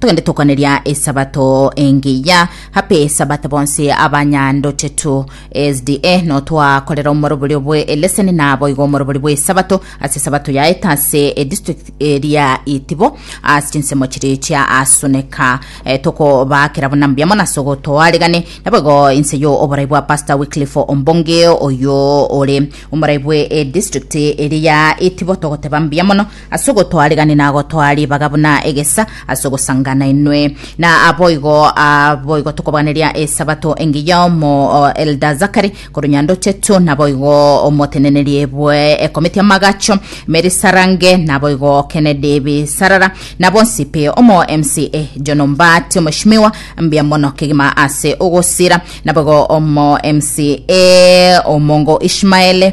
Togende tokoneria esabato engiya happy sabato bonse abanyandochetu sda notwakorera omoroborio bwe eleseni na boigo omorobori bwe esabato ase esabato yaeta ase edistrict eria itibo ase chinsemo chiri chia asuneka e, tokobakera buna mbuya mono ase ogotoaregane naboigo inse yo oborai bwa pastor wycliffe ombonge oyo ore omorai bwe edistrict eria itibo togoteba mbuya mono ase ogotwaregania na gotwaa ribaga buna egesa, ase ogosanga nainwe. Na boigo ah, boigo tokobaganeria Esabato engiya omo oh, Elder Zachary korwa Nyandochetu, na boigo omotenenerie bwe ekomiti amagacho Mary Sarange, na boigo Kennedy Bisarara, na bonsi pi omo MCA John Ombati omoshimiwa mbia mono kegima ase ogosira, na boigo omo MCA Omongo Ishmael,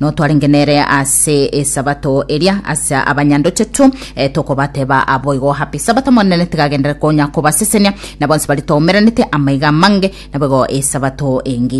Notwarenge nere ase esabato eria ase abanyandochetu, e, tokobateba aboigo happy sabato Monene tigagendere konya kobasesenia, na bonsi bari toumeranete amaiga amange, naboigo esabato engiya.